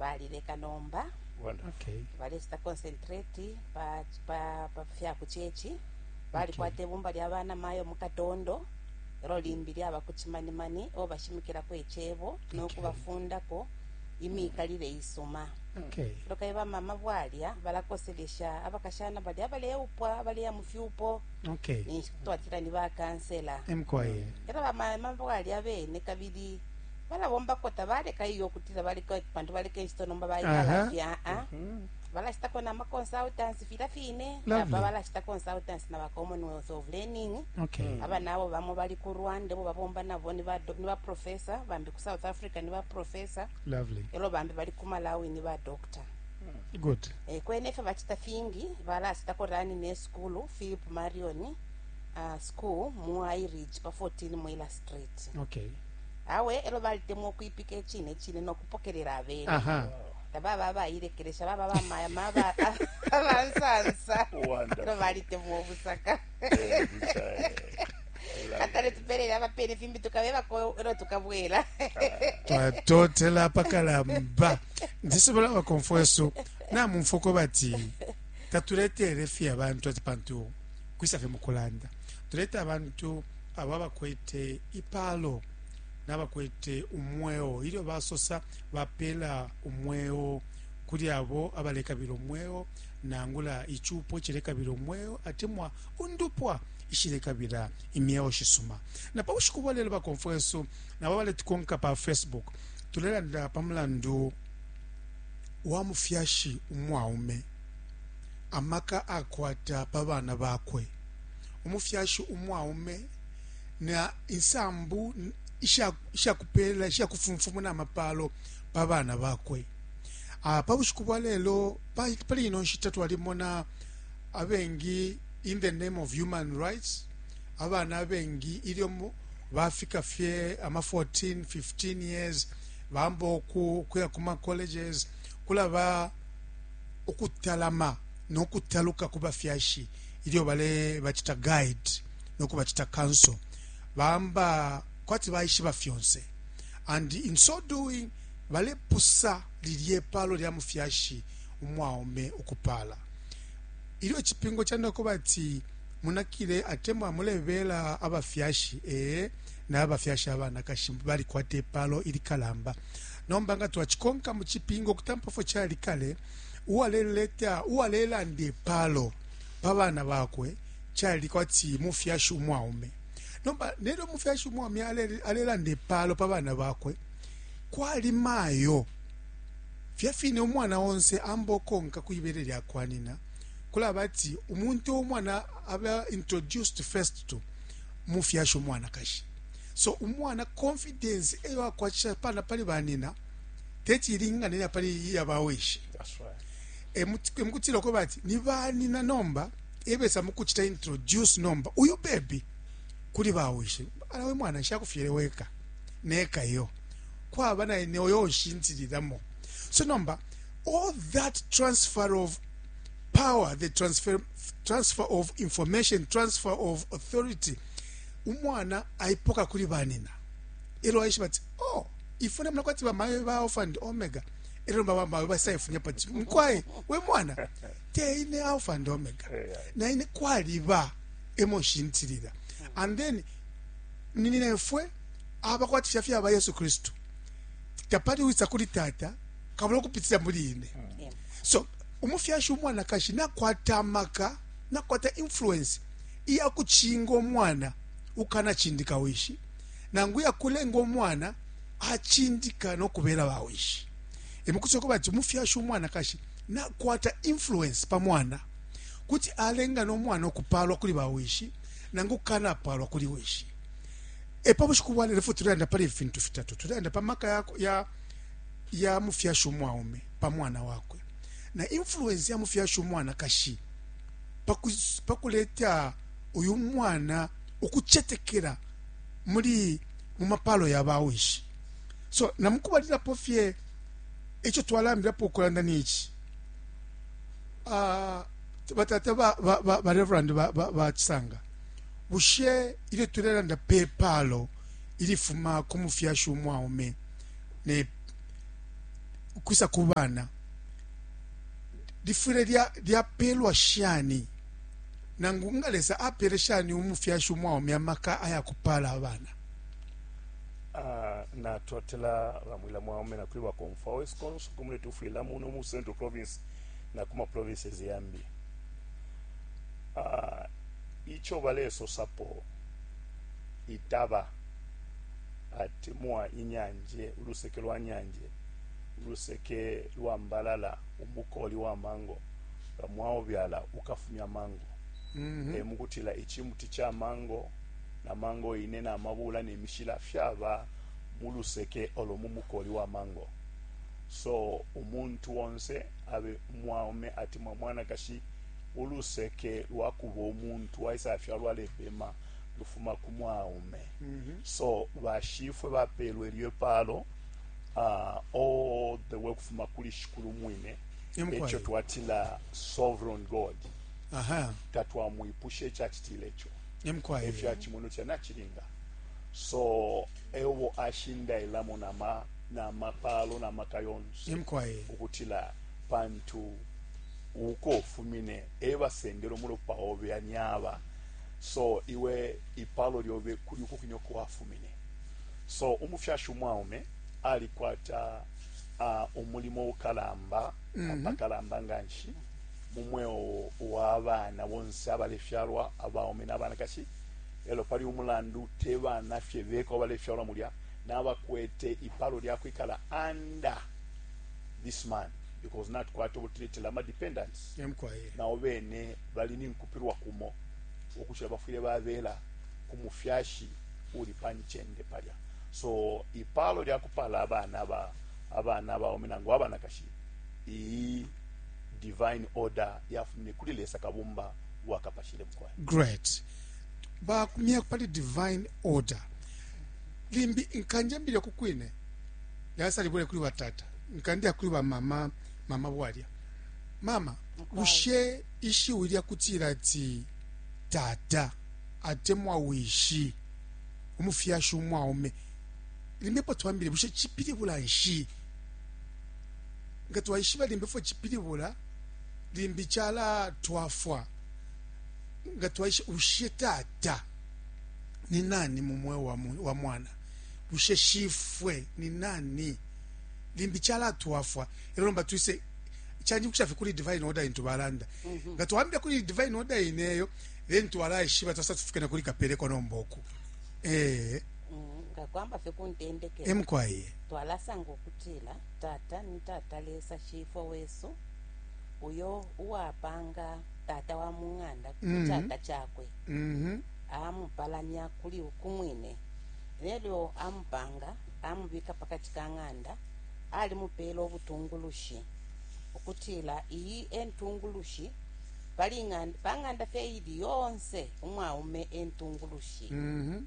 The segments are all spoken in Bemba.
balileka nomba Well, okay. balesita concentrate pa, pa, pa fya ku chechi balikwata ibumba lya bana mayo mu katondo elo limbi lyaba ku chimanimani o bashimikilako icebo nokubafundako imikalile isuma Okay. loka iba mama bwalya balakoselesha abakashana balya abaleupwa abaleya mu fyupo Okay. ninshi twatila ni bakansela Emkwaye. era bamama bwalya bene kabili balabombako tabaleka iyo kutila baleka pantu baleka incito nomba baikala Aha. fye aa Mhm. balacitako na maconsultants fila fine Lovely. aba balacita consultants na ba commonwealth of learning okay aba nabo bamo bali ku rwanda bo babomba nabo ni ba do- ni ba professor bambi ku south africa ni ba professor lovely elo bambi bali ku malawi ni ba doctor good Eh, kwene fye bacita fingi balacitako rani ne sukulu philip marion uh, school mu iridge pa 14 mwila street okay awe elo balitemwa ukwipika icine cine nokupokelela abene tababa abayilekelesha baba bamaya maba abansansa elo balitemwa obusaka atale tupelele abapene fimbi tukabebako elo tukabwela twatotela apakalamba ndisobola bakomfwesu namumfuko bati tatuleteele fye abantu ati pantu kwisa fye mu kulanda tuleta abantu abo abakwete ipalo n'abakwete umweo ilyo basosa bapeela umweo kuli abo abalekabila umweo nangula icupo cilekabila umweo atemwa undupwa ishilekabila imyeo shisuma na pa bushiku bwa lelo bakomfwa yesu nabo baletukonka pa facebook tulelanda pa mulandu wa mufyashi umwaume amaka akwata pa bana bakwe. Umufyashi umwaume na insambu ishakupela ishakufumfumuna amapalo pa bana bakwe. Ah, pa bushiku bwa lelo pali ino nshita twalimona abengi in the name of human rights abana abengi ilyo bafika fye ama 14 15 years bambo ku kuya kuma colleges kulaba ukutalama no kutaluka ku bafyashi ilyo balebacita guide no kubacita counsel bamba kwati baishiba fyonse and in so doing balepusa lilye palo lya mufyashi umwaume ukupala ilyo icipingo canda kuba ati munakile atemwa mulebela abafyashi ee na abafyashi abanakashi balikwata ipalo ilikalamba Nomba nga twacikonka mu cipingo ukutampa fyo cali kale, uwaleleta uwalelanda ipalo pa bana bakwe cali kwati mufyashi umwaume. Nomba nelyo mufyashi umwaume alelanda ipalo pa bana bakwe, kwali mayo fya fine umwana onse amba ukonka ku ibele lya kwa nyina. Kulaba ati umuntu umwana aba introduced first to mufyashi umwanakashi. So umwana confidence eyo akwatisha pana pali banina teti ilingane ya pali iya bawishi. That's right. E mukutila e ko bati ni banina nomba ebesa mukuchita introduce nomba uyu baby kuli bawishi. Ala we mwana nshakufyele weka neka yo. Kwaba na ene oyo nshintiliramo. So nomba all that transfer of power, the transfer, transfer of information, transfer of authority – umwana aipoka kuli banina elo aishiba ati oh ifwe namna kwati bamayo ba alpha and omega elo baba mayo basaifunya pati mkwaye we mwana te ine alpha and omega na ine kwaliba emo shintilila and then ninina ifwe abakwati fya fyaba yesu kristu tapali wisa kuli tata kabula kupitira muri ine so umufyashi umwanakashi nakwata amaka nakwata influence iya kucinga umwana ukukanacindika wishi nangu iya kulenga umwana acindika no kubela bawishi. E mu kusoka bati umufyashi umwanakashi nakwata influence pa mwana, kuti alenga no mwana ukupaalwa kuli bawishi nangu ukukanapaalwa kuli wishi. E pa bushiku bwa lelo fwe tulelanda pali ifi fintu fitatu, tulelanda pa maka ya ya mufyashi umwaume pa mwana wakwe na influence ya mufyashi umwanakashi pa kuleta uyu mwana ukucetekela muli mu mapalo ya bawishi so na mukubalilapo fye ico twalambilapo ukulanda nici ah, batata ba reverend ba cisanga bushe ilyo tulelanda pe palo ilifuma ku mufyashi umwaume ne kwisa ku bana lifwile lyapelwa shani? Nangu nga Lesa apele shani umufyashi umwaume amaka aya kupala abana? Ah, natotela bamwila mwaume nakuli bakomfwa wesu konse kumule tufwila muno mu central province na kuma provinces yambi ah, icho baleso sapo itaba ati mwa inyanje uluseke lwa nyanje uluseke lwa mbalala, umukoli wa mango. Nga mwaubyala, ukafumya mango. E mu kutila icimuti ca mango na mango ine na mabuula ne mishila fyaba mu luseke olo mu mukoli wa mango. So umuntu onse abe mwaume atemwa mwanakashi, uluseke lwa kuba umuntu waisafyalwa alepema lufuma ku mwaume. So bashifwe bapeelwe ilyo ipaalo. ah, all the way kufuma kuli shikulu mwine Imkwai. ekyo twatila sovereign god aha tatwamwipusha ekyakitile ekyo emkwai ekyakimunu kye nakiringa so ewo ashindailamo nama namapaalo namaka yonse emkwai ukutila pantu uko ufumine ebasendera omulopa obe anyaba so iwe ipalo lyobe kuli uko kwine uko wafumine So umufyashi umwaume alikwata a umulimo ukalamba apakalamba nga nshi mu mweo wa bana bonse abalefyalwa abaume na banakashi lelo pali umulandu te bana fye beka abalefyalwa mulya nabakwete ipalo lya kwikala under this man because natukwata ubutiletela ama dependents Em kwae. nabo bene bali ninkupilwa kumo ukucila bafwile babela ku mufyashi uli pa ncende palya so ipalo lya kupala abana ba abana baume nangu abanakashi iyi divine order yafumine kuli lesa kabumba wakapashile mukwayo great bakumye pali divine order limbi nkanjambile kukwine yasalibule kuli batata nkandia kuli bamama mama bwalya mama bushe ishiwi lyakutila ati tata atemwa wishi umufyashi umwaume limbe po twambile bushe cipilibula nshi nga twaishiba limbe fwe cipilibula limbi cala twafwa nga twaishe ushe tata ni nani mu mweo wa, wa mwana bushe shifwe ni nani limbi cala twafwa elo nomba twise chanjibukisha fye kuli divine order intu balanda mm -hmm. nga twambile kuli divine order ineyo then twalaishiba ta certificate nakuli kapeleko nomba oku eh mm, ngakwamba fye kuntendekela emukwaye twalasanga ukutila tata ni tata lesa shifwa wesu uyo uwapanga tata wa mung'anda ku mm -hmm. tata chakwe mm -hmm. amupalanya kuli ukumwine lelo amupanga amubika pakati ka ng'anda alimupeela obutungulushi okutila iyi entungulushi pali ng'anda pa ng'anda fye ili yonse umwaume entungulushi mm -hmm.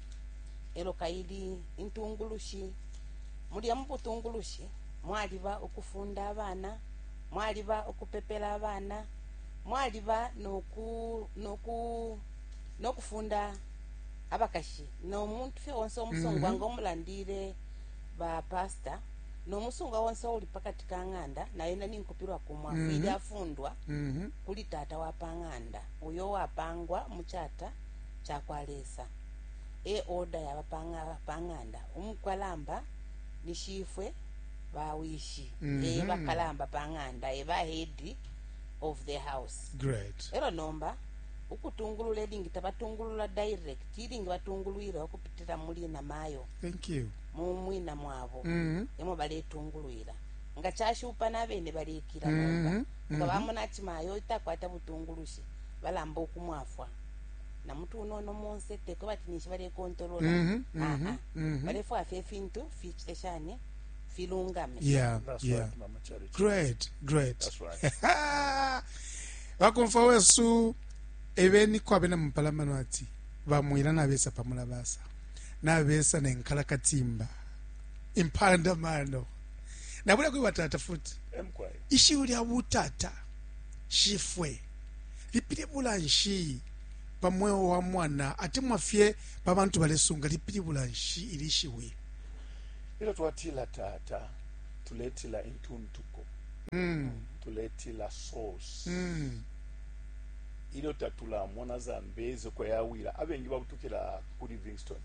elo kaili intungulushi mulya mubutungulushi mwaliba ukufunda abana mwaliba ukupepela abana mwaliba noku noku nokufunda abakashi no muntu fye onse omusongo mm -hmm. anga omulandile ba pastor no musunga wonse uli pakati ka ng'anda na yena ninkupilwa kumwa mm -hmm. ili afundwa mm -hmm. kuli tata wa pa ng'anda uyo wapangwa mu chata cha kwa lesa e order yaba pa ng'anda umukalamba ni shifwe bawishi mm -hmm. e bakalamba pa ng'anda e bahedi of the house great ero nomba ukutungulula ilingi tabatungulula direct ilingi batungulwira okupitira muli namayo thank you mu mwina mwabo Mhm. emo baletungulwila nga cashupa nabene balekila Mhm, nomba mhm. nga bamona ati mayo takwata butungulushi balamba okumwafwa na mutu unono monse teko bati ninshi balekontolola Mhm, mhm, Ah, ah. mhm. balefwaya fye ifintu ficite shani filungame yeah That's yeah right, Mama Charity. great great That's right. bakomfwa wesu ebeni kwabe na mupalamano ati bamwila nabesa pamulabasa nabesa ne nkalakatimba impanda mano nabula kwiwa tata futi ishiwi lya butata shifwe lipilibula nshi pa mweo wa mwana atemwa fye pa bantu balesunga lipilibula nshi ili shiwi ilo twatila tata tuletila intuntuko mm. tuletila source mm. ilyo tatulamona zambezi uko yawila abengi babutukila ku Livingstone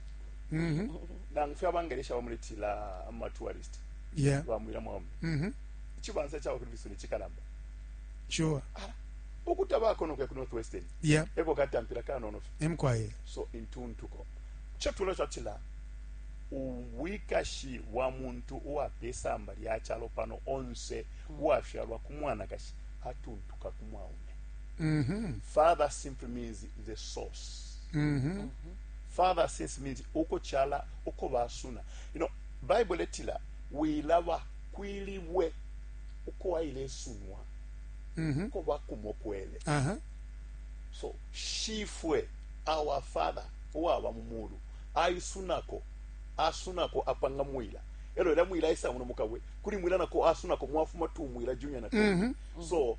mhm. nangu fye abangelesha bamuletila amatourist bamwila mwaume mhm. ichibanza chaba ku Livingstone chikalamba sure ah, ukutabako nokuya ku northwestern yeah. eko katampira kanono emkwaye so intuntuko cho tulo chatila ubwikashi bwa muntu uwapesamba lya chalo pano onse mm. uwafyalwa ku mwanakashi atuntuka ku mwaume mm -hmm. father simply means the source mm -hmm. father since means uko chala uko basuna you know bible letila wilaba kwilibwe uko aile sunwa mm -hmm. uko bakumokwele uh -huh. so shifwe our father uwaba mu mulu aisunako asunako apanga mwila elo era mwila isa muno mukabwe kuli mwila nako asunako mwafuma tu mwila junior nako mm -hmm. so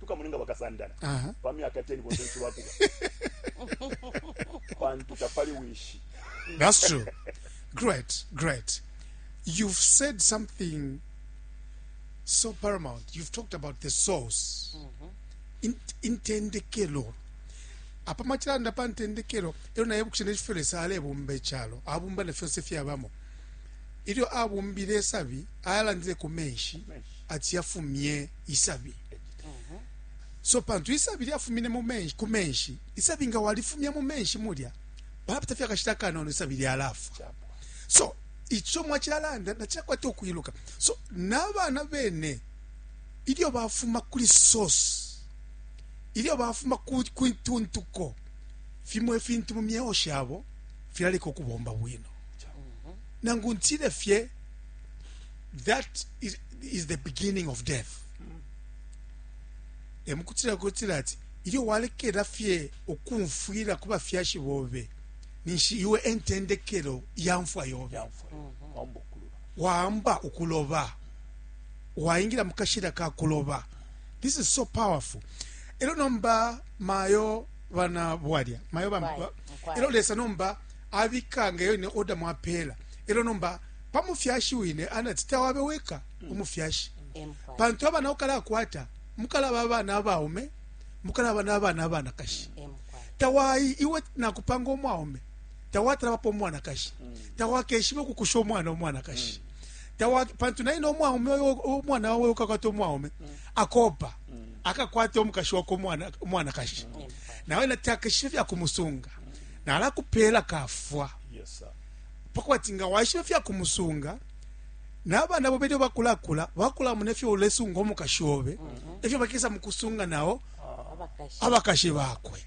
tukamulenga bakasandana pa myaka 10 bonse nshi bakuba pantu tapali wishi that's true great great you've said something so paramount you've talked about the source mm -hmm. In, intendekelo apa machilanda pa ntendekelo ero naye bukuchene chifele sale bumbe chalo abumba ne fyose fyabamo ilyo abumbile sabi ayalandile ku menshi ati yafumye isabi so pantu isabi lyafumine mu menshi ku menshi isabi nga walifumya mu menshi mulya papita fye akashita kanono isabi lyalafwa so ico mwacilalanda nacilakwata ukwiluka so n'abana bene ilyo bafuma kuli source ilyo bafuma ku ntuntuko fimo ifintu mu myeo shabo filaleka ukubomba bwino nangu ntile fye that is, is the beginning of death mm. emukutira kutira ati iyo walekera fye okumfwira kuba fyashi bobe ninshi iwe entendekero yamfwa yobe mm-hmm. waamba okuloba waingira mukashira ka kuloba this is so powerful ero nomba mayo bana bwalya mayo bamba ero lesa nomba abikanga yo ne order mwapela ero nomba pa mufyashi wine anati, Tawabe weka umufyashi, pantu abana ukalakwata mukalaba abana abaume, mukalaba na bana abanakashi. Tawai iwe nakupanga umwaume, tawatalabapo umwanakashi, tawakeshibe ukukusha umwana umwanakashi tawa pantu naye nomwaume umwana wawe ukakwata umwaume akopa akakwata omukashi wakwe umwanakashi nawe natakeshibe fyakumusunga nalakupela kafwa yes, pakweba ati nga waishiba ifya kumusunga nabana bobe ilyo bakulakula bakulamona ifyo ulesunga umukashi obe efyo bakesa mukusunga nao abakashi bakwe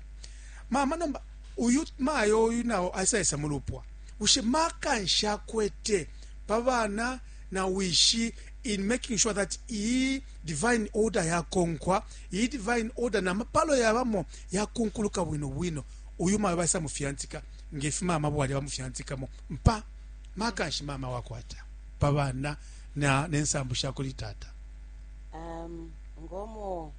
mama nomba uyu mayo uyu nao asaisa mulupwa bushe maka nshakwete pa bana na wishi in making sure that iyi divine order yakonkwa iyi divine order na mapalo yabamo yakunkuluka bwino bwino uyu mayo baisa mufiantika nge fi mama bwali bamufyantikamo mpa maka nshi mama wakwata pa bana na nensambu sha kuli tata um, ngomo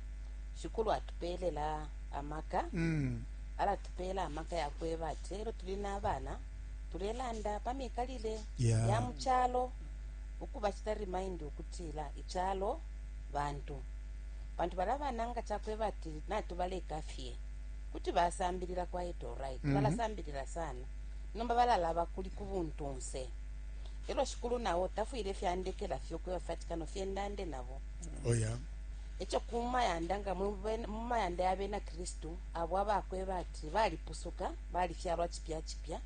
shikulu atupelela amaka mm. alatupeela amaka yakweba ati lero tuli n'abana tulelanda pa mikalile yeah. ya mu kyalo ukuba kita remind ukutila ikyalo bantu bantu bala bana nga kyakweba ati natubaleka fye kuti basambilila quite alright mm -hmm. balasambilila sana nomba balalaba kuli ku buntunse elo shikulu nawo tafwile fyandekela fye ukuya fatikano fye ndande nabo oh, yeah. ekyo kumayanda nga mumayanda yabena kristu abo abakweba ati balipusuka balifyalwa kipya kipya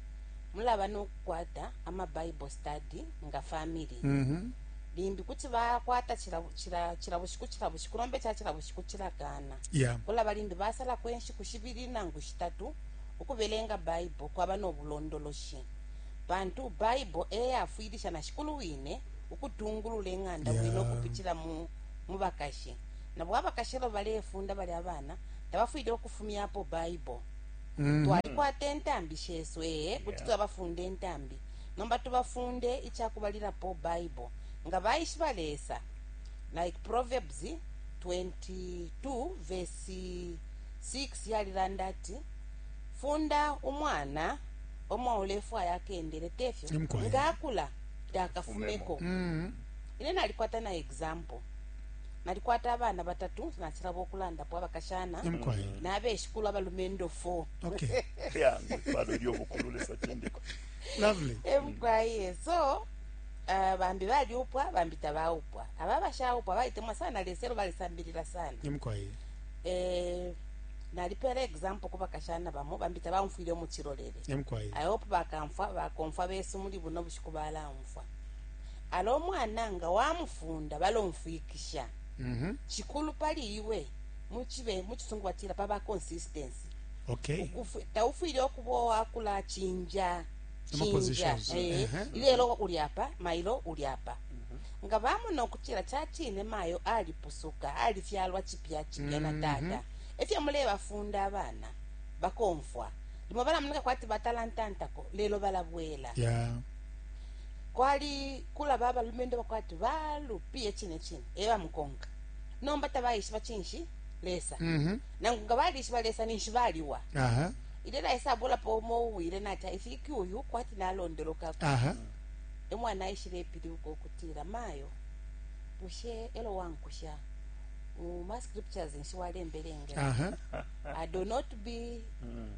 mulaba nokukwata ama bible study nga family mm -hmm. limbi kuti bakwata kila, kila, kila bushiku kila bushiku nombe kya kila bushiku kilagana Yeah. Kulaba limbi basalapo inshiku shibili nangu shitatu ukubelenga Baibo kwaba no bulondoloshi, pantu Baibo e yafwilisha na Shikulu wine ukutungulula ing'anda bwino Yeah. ukupitila mu mu bakashi. Nabo abakashi elo balefunda balya bana, tabafwile ukufumyapo Baibo. Twalikwata intambi shesu, ee, kuti Yeah. twabafunda intambi, nomba tubafunde ica kubalilapo Baibo. Nga baishiba Lesa, like Proverbs 22 vesi 6 yalilanda ati, Funda umwana pa mwa ulefwaya akendele, te fyo? Nimkwai. Nga akula takafumeko. Mm. Ine nalikwata na example. Nalikwata abana batatu nasilaba ukulandapo abakashana Nimkwai. nabeshikulu abalumendo 4 Okay. yange pano eri obukulu lesa cindiko Lovely. emgwaye so Bambi balyupwa, bambi tabaupwa. Aba abashaupwa balitemwa sana Lesa e lyo balisambilila sana. Mukwai e nalipeela example ku bakashana bamo, bambi tabaumfwile umu cilolele. Mukwai I hope bakamfwa, bakomfwa besu muli buno bushiku balaumfwa. Ala umwana nga wamufunda balomfwikisha. Cikulu pali iwe, mu Cisungu batila paba consistency. Taufwile ukuba uwakulacinja. cinja eh, ilelo uli apa mailo uli apa mhm. nga bamona ukutila cacine mayo alipusuka alifyalwa cipya cipya na mhm. tata efyo mulebafunda abana bakomfwa limo balamoneka kwati batalantantako lelo balabwela yeah. kwali kulaba abalumendo bakwati balupiye cine cine ebamukonka nomba tabayishiba cinshi lesa Mhm. nangu nga balishiba lesa ninshi baliwa Aha. ilyo laisa abulapo umo uwile nati ifiki uyu kwati nalondolokako Aha. emwana aishile epilibuka ukutila mayo bushe elo wankusha mu ma scriptures nshi walembelengela Aha. i do not be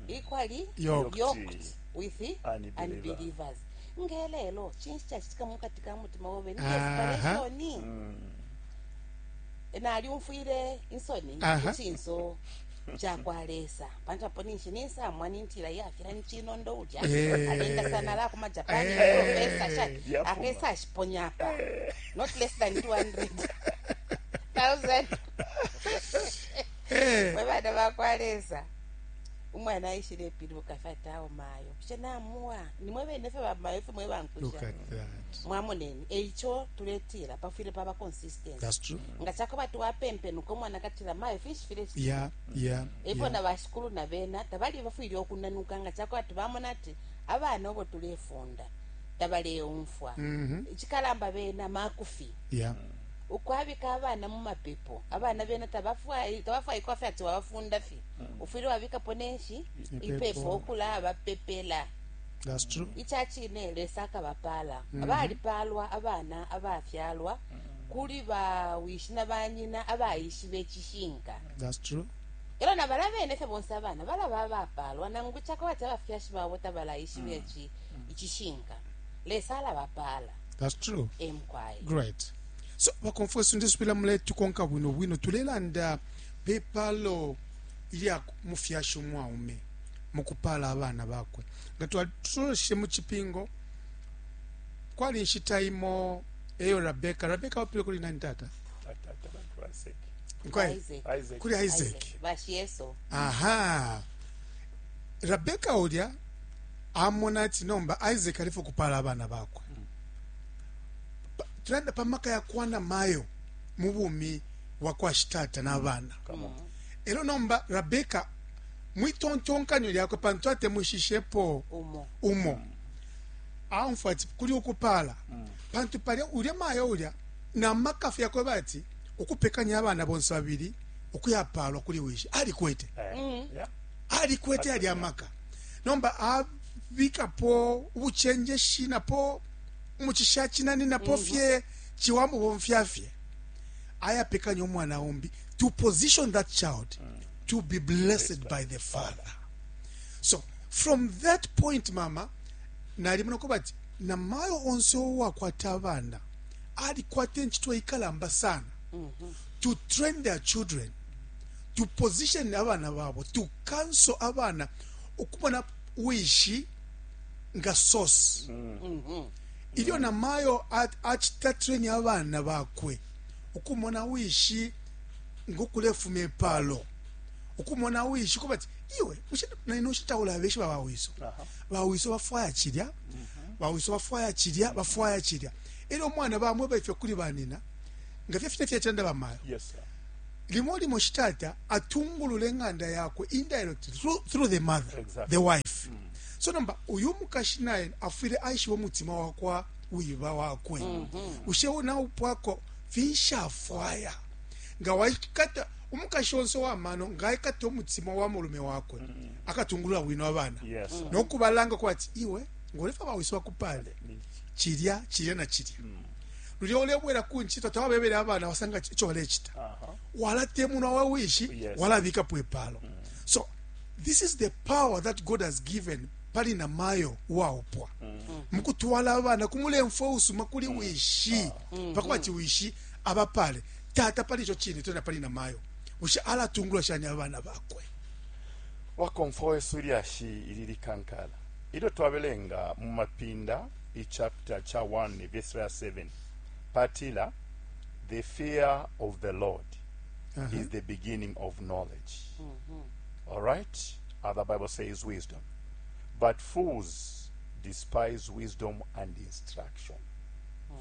equally Yoked. yoked with Unbeliever. unbelievers ngelelo cinshi cacitika mukati ka mutima wobe ni Aha. desperation nalyumfwile insoni ku cinso ca kwa lesa pantu apo ninshi ninsamwa nintila yafira ni chinondo ulya eh. alinda sana la kuma japan eh. professor sha akesa ashiponya apa eh. not less than 200 thousand webana bakwa lesa umwana aishile epiluka fatawo mayo bushe namuwa nimwe bene fye bamayo fye mwe Look bankusha at that. mwamoneni eico tuletila pafwile paba consistency That's true. nga cakuba twapempenuka umwana akatila mayo finshi file Yeah, yeah. efyo na yeah. bashikulu na bena tabali bafwile okunanuka nga cakuba tubamona ati abana obo tulefunda tabaleumfwa Mhm. icikalamba bena makufi Yeah. ukwabika abana mu mapepo abana bena tabafwayi- tabafwayikwa fye ati wabafunda fye ufwile wabikapo nenshi ipepo ukulabapepela ica cine lesa akabapaala mm -hmm. balipaalwa abana abafyalwa mm -hmm. kuli bawishi na banyina abaishiba icishinka elo na bala bene fye bonse abana balaba abapaalwa nangu cako bati abafyashi babo tabalaishiba mm. ici mm. icishinka lesa alabapaala emukwaye so bakonfwesi ndisubila muleti konka bwino bwino tulelanda Pe paalo ilya mufyashi umwaume mu kupaala abana bakwe, nga twatuloleshe mu Cipingo, kwali inshita imo eyo Rabeka, Rabeka aupilwe kuli nani, tata? Kuli Isaac. Aha. Rabeka ulya amona ati nomba Isaac alifo kupala abana bakwe. Tulanda pa maka ya kwana mayo mu bumi wa kwa shitata na bana elo nomba rabeka mwitontonkanyo lyakwe pantu atemwishishepo umo, umo. Mm. aumfwa ati kuli ukupala mm. pantu palya ulya mayo ulya na makafu yakwe bati ukupekanya abana bonse babili ukuyapalwa kuli wishi alikwete eh. mm. alikwete yali amaka nomba abikapo ubuchenjeshi napo umuchisha chinani napo mm-hmm. fye chiwamubomfya fye ayapekanya umwana umbi to position that child to be blessed by the father so from that point mama nalimona ko bati na mayo onse owakwata abana alikwata enchito ikalamba sana mm-hmm. to train their children to position abana babo to counsel abana ukumona wishi nga source mm-hmm. Ilyo namayo acita treni abana bakwe, ukumona wishi ngo kulefuma ipalo, ukumona wishi kubati iwe bushe naino nshita taulabeshiba ba wiso. Ba wiso bafwaya cilya, mm-hmm. ba wiso bafwaya cilya, bafwaya cilya. Elyo umwana bamweba ifyo kuli banina, nga fye fine fyacilanda bamayo. Yes, sir. limo limo shitata atungulula eng'anda yakwe indirectly through, through the mother exactly. the wife mm. so nomba uyu mukashi naye afwile aishiba umutima wakwa wiba wakwe mm -hmm. ushe wona upwako finshafwaya nga waikata umukashi onse wamano nga aikata umutima wa mulume wakwe mm -hmm. akatungulula wino abana yes. mm -hmm. nokubalanga kuba ati iwe ngolefa bawisi bakupale chilya chilya na chilya mm -hmm. lulya olebwera ku nchito tawabebere abana wasanga icho walechita uh -huh. walatemunwa wawishi yes. walabikapo epalo mm -hmm. so this is the power that god has given pali na mayo waupwa mukutwala abana kumulemfwe usuma kuli mm. wishi mm. pakuba ti wishi abapale tata pali ico cine tena pali na mayo wishi alatungula shani abana bakwe wakomfwa wesu ilyashi ili likankala ilyo twabelenga mu mapinda ichapta cha 1 verse 7 patila the fear of the lord uh -huh. is the beginning of knowledge mm -hmm. All right? Other Bible says wisdom. But fools despise wisdom and instruction.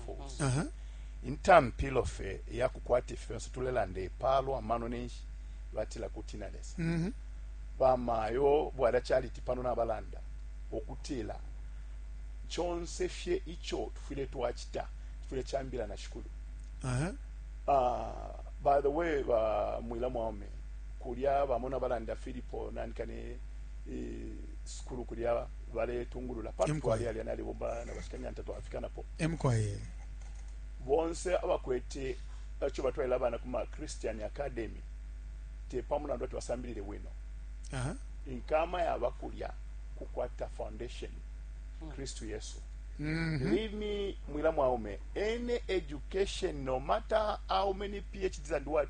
Fools. Uh-huh. intampilo fe yakukwata ifi fyonse tulelanda epalo amano nenshi batila kutina lesa mm-hmm. bamayo bwala charity pano nabalanda okutila chonse fye icho tufwile twachita tufwile chambila na shikulu uh-huh. uh, by the way uh, mwila mwaume kulya bamo na balanda Filipo nanika ne e, sukulu kulya baletungulula pambi twali alya nalibomba na bashikanyanta twafikanapo emkwaye bonse abakwete aco batwaila abana kuma Christian Academy te pamulandu ati basambilile bwino uh -huh. inkama yaba kulya kukwata foundation mm. Kristu Yesu Mm -hmm. Leave me mwila mwaume any education no matter how many PhDs and what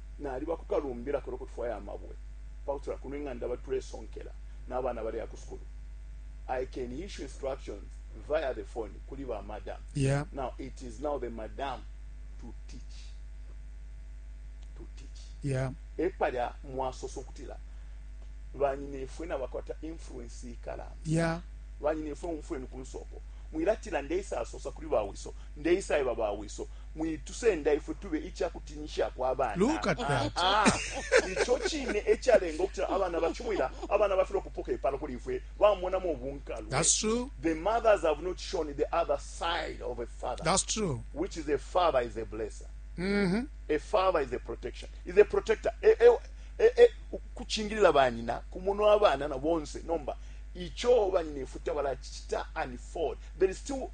naliba ku kalumbila kelo kutufwaya amabwe pakutila kuno ing'anda batulesonkela n'abana baleya ku sukulu i can issue instructions via the phone kuli ba madam yeah. now it is now the madam to teach to teach yeah. epalya mwasosa okutila banyinefwe nabakwata influence ikalamba yeah. banyinefwe umfweni ku nsoko mwilatila ndeisa asosa kuli bawiso ndeisa eba bawiso mwitusenda ifwe tube ica kutinyishako abana. Look at that. Ah, ah. Ico cine ecalenga ukutila abana bacumwila abana bafilwa kupoka ipalo kuli ifwe bamonamo bunkalwe. That's true. The mothers have not shown the other side of a father. That's true. Which is a father is a blesser. Mm -hmm. A father is a protection. Is a protector. E, e, e, e, kuchingilila banyina kumono abana na bonse nomba ico banyina ifuta balachita unfold. There is still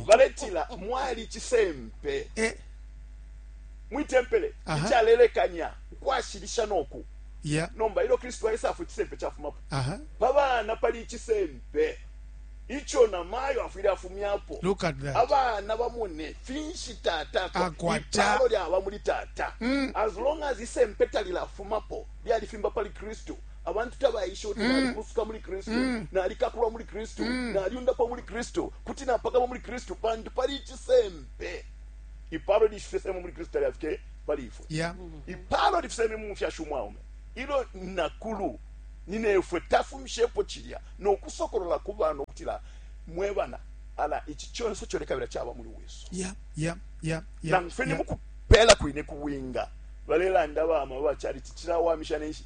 baletila mwali icisempe eh. mwitempele icalelekanya ukwashilisha noku yeah. nomba ilo kristu aisafwe icisempe cafumapo uh -huh. pabana pali icisempe ico na mayo afwile afumyapo abana bamone finshi tata akwataipalo lyaba muli tata mm. as long as isempe talilafumapo lyalifimba pali kristu abantu tabaisha uti nalikufuka muli kristu nalikakulwa muli kristu naliundapwa muli kristu kuti napakama muli kristu pantu pali icisempe ipalo lishifisemo muli kristu talyafike pali ifwe Yeah. ipalo lifiseme mu mufyashi umwaume ilo nakulu ninefwe tafumishepo cilya nokusokolola ku bana ukutila mwe bana ala ici conse colekabila caba muli wiso Yeah. Yeah. Yeah. Yeah. nangu fene Yeah. mukupela kwine kuwinga balelanda bama bacalici cilawamisha nenshi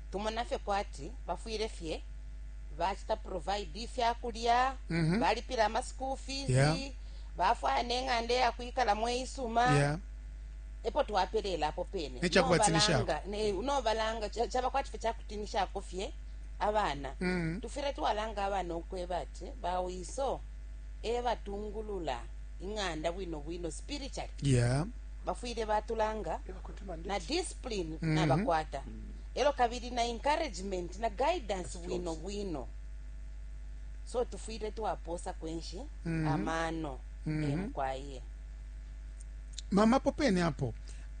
tumona fye kwati bafwile fye bacita provide ifya kulya Mhm. balipila ama school fees Yeah. bafwaya neng'anda eyakwikalamo eisuma yeah epo twapelela apo pene Nechakubatinishako. Nobalanga- ne- nobalanga cha- chaba kwati fye chakutinishako fye abana Mhm. tufwile twalanga abana ukweba ati bawiso ebatungulula ing'anda bwino bwino spiritually yeah bafwile batulanga na discipline mm -hmm. nabakwata elo kabili na encouragement na guidance bwino bwino so tufwile twaposa kwenshi mm -hmm. amano mm -hmm. emkwaye mama popene apo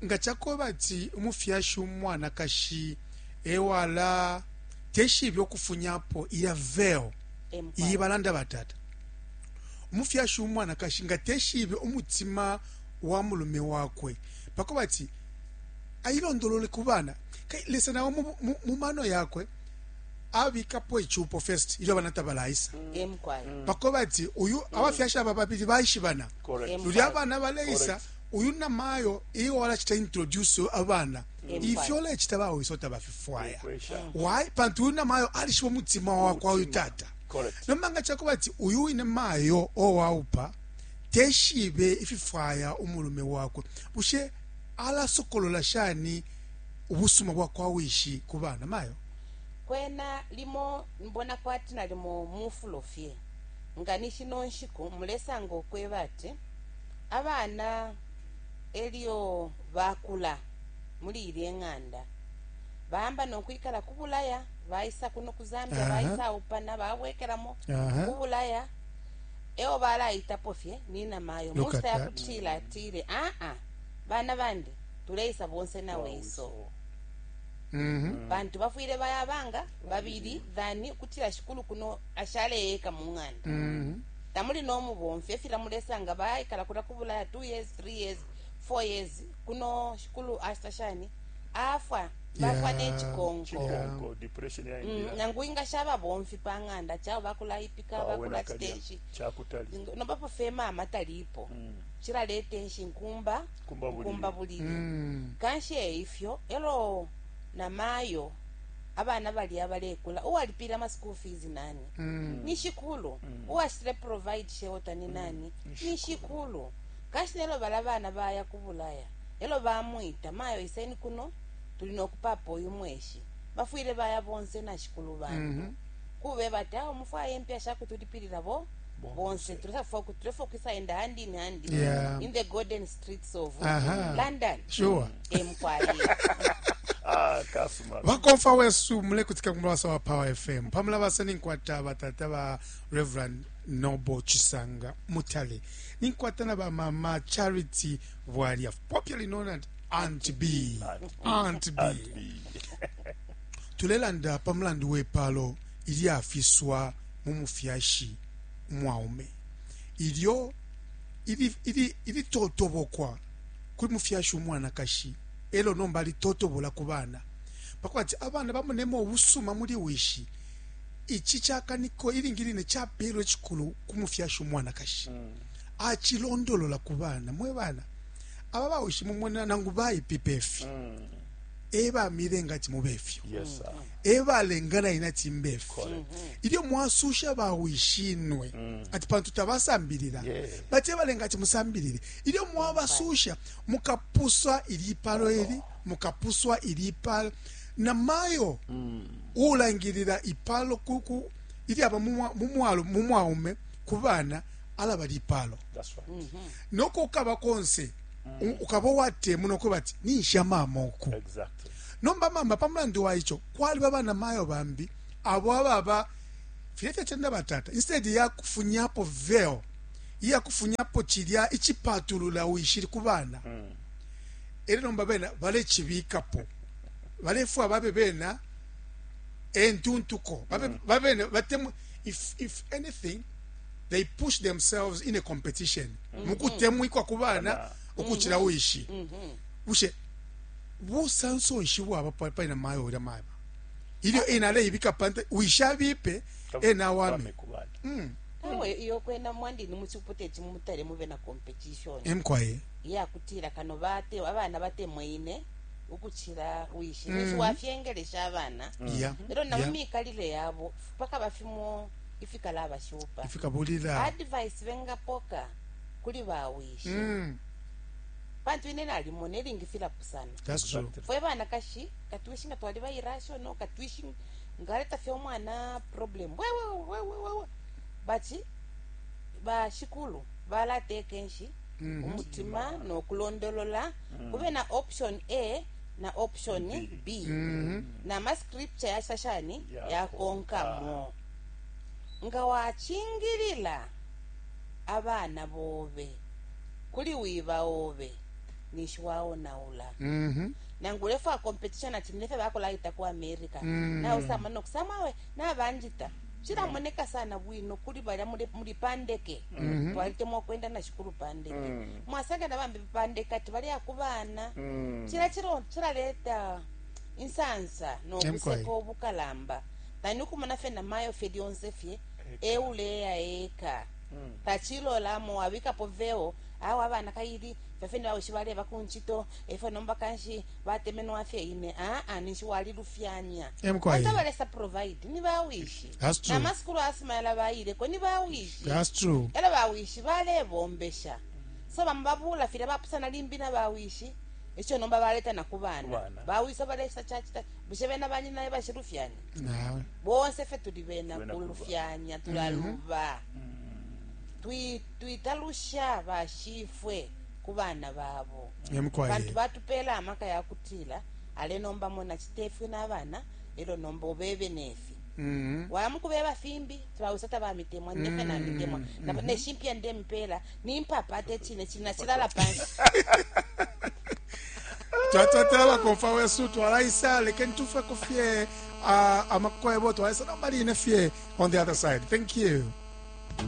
nga chakoba ati umufyashi umwanakashi ewala teshibe okufunyapo iya veo iyi balanda batata umufyashi umwanakashi nga teshibe umutima wa mulume wakwe pakubati ayilondolole ku bana. Lesa nao mu mano yakwe abikapo ichupo first ilyo abana tabalaisa pakubati uyu mm. abafyashi aba babili baishibana luli abana baleisa uyu na mayo iyo walachita introduce abana ifyo lechita bawo isota bafifwaya why pantu uyu na mayo alishiba mutima wa kwa uyu tata nomanga chakubati uyu ine mayo owaupa teshibe ififwaya umulume wakwe, bushe alasokolola shani ubusuma bwa kwa wishi ku bana? Mayo. Kwena limo nbona kwati nalimo mufulo fye, nga ni shino nshiku mulesanga ukweba ati abana elyo bakula muli ilye ng'anda, baamba no kwikala ku Bulaya, baisa kuno ku Zambia, Aha. baisa aupana, babwekelamo Aha. ku Bulaya. e o balaitapo fye ni namayo mu nshita ya kutila atile, Aa, bana bandi, tuleisa bonse na wiso. Mhm. pantu bafwile baya banga babili thani ukutila shikulu kuno ashaleeka mu ng'anda mhm. tamuli no mubomfi efila mulesanga baikala kula kubulaya 2 years 3 years 4 years kuno shikulu ashita shani afwa bafwa ne cikonko cikonko depression Mm, yaingira nangu ingasha ababomfi pa ng'anda chao bakulaipika Awe nakalya, bakulacitenshi cakutali Zingo- nomba po fema amatalipo Mm. cilaleta enshi nkumba Nkumba bulili. nkumba bulili Mm. kanshi eifyo elo na mayo abana bali abalekula uwalipile ama school fees nani Mm. ni shikulu uwashitile provide shelter ni nani ni shikulu Kanshi nelyo balabana baya ku Bulaya, elyo bamwita, Mayo iseni kuno, tuli no kupapa uyu mweshi. Bafwile baya bonse na shikulu bantu kubeba ati, Awe mufwaye impia shakutulipilila bo bonse. Tulesa fwaya uku tulefwaya ukwisa enda hand in hand Yeah. in the golden streets of Aha. London. Sure. Eh, mufwaye. Ah, kasuma. bakomfa wesu mulekutika ku mulabasa wa power fm pamulabasa ninkwata batata ba reverend noble chisanga mutale ninkwata na ba mama charity bwalya popularly known as aunt b aunt b tulelanda pa mulandu wepalo ilyafiswa mu mufyashi umwaume ilyo ili- ili- ilitotobokwa kuli mufyashi umwanakashi elo nomba alitotobola ku bana pakwati abana bamonemo ubusuma muli wishi Ici cakaniko ilingi line capeelwa icikulu ku mufyashi umwanakashi. Acilondolola ku bana, Mwe bana, aba bawishi mumonela nangu baipipe fi, e bamilenga ati mube fyo, e balenga na ine ati mbe fi. Ilyo mwasuusha bawishinwe ati pantu tabasambilila, bati e balenga ati musambilile, ilyo mwabasuusha, mukapuswa ilipalo ili, mukapuswa ilipalo. na mayo uulangilila ipalo kuku ilyaba mu mwaume ku bana alaba lipalo no ko ukaba konse ukaba uwatemuna ukuba ati ninsha mama uku nomba mama pa mulandu wa ico kwaliba bana mayo bambi abo ababa filya fyacenda batata instead ya kufunyapo veil iya kufunyapo cilya icipatulula wishili ku bana mm. ere nomba bena balechibikapo balefwa babe bena entuntuko babe mm. babe batemwe if if anything they push themselves in a competition mm-hmm. mukutemwikwa ku bana ukucila mm-hmm. uishi mm-hmm. bushe busanso nshi bwaba pali na mayo ulya maba ilyo ah. ena aleibika pante uishabipe ena wame mm. awe iyo kwena mwandini muchiputa echi mumutale muve na competition emkwaye yakutira kano bate abana batemweine ukucila wishi mm. ninshi wafyengelesha abana yeah. elo na yeah. mumikalile yabo pakaba fimo ifikalabashupa ifikabulila advice bengapoka kuli bawishi mm. pantu ine nalimona elingi filapusana fwe banakashi katwishi nga twali bairashono katwishi ngaleta fye omwana problem wewewewewewe bati bashikulu balateka enshi mm-hmm. umutima nokulondolola kube na option a na option b mm-hmm. na mascripture yasa shani yakonkamo nga wachingilila abana bobe kuli wiba obe ninshi waonaula mm -hmm. nangu ulefa competition ati nilefe bakolaita ku america mm -hmm. nawe samana okusamawe nabanjita cilamoneka sana bwino kuli balya muli pandeke mhm. twalitemwa ukwenda na shikulu pandeke mm. mwasanga na bambi pandeke ati baleya ku bana mm. cila cilo cilaleta insansa nobuseko obukalamba tani ukumona fye na mayo fye lyonse fye euleya eka mm. tacilolamo wabikapo veo awa abana kaili fafeni baweshi baleba ku ncito efo nomba kanshi watemenwa fye ine aa ninshi walilufyanya bonse balesa provide ni bawishi na masukulu asuma yala bayileko ni bawishi elo bawishi balebombesha so bamo babula filya bapusana limbi na bawishi ekyo nomba baleta na ku bana bawisa balesa kyakita bushe bena banyina ye bashilufyanya bonse fye tuli bena kulufyanya tulaluba mm-hmm. twitalusha bashifwe ku bana babo. Pantu batupela amaka ya kutila, Ale nomba mona, citefyo na bana, elo nomba ubebe nefi. Mm-hmm. waya mukubeba fimbi tibawisa tabamitemwa nine fena mm-hmm. mitemwa mm-hmm. neshimpya nde mipela nimpapa ate chine chine nachilala pansi twatwatela bakofa wesu twalaisa lekeni tufeko fye uh, amakwebo twalaisa nomba line fye on the other side thank you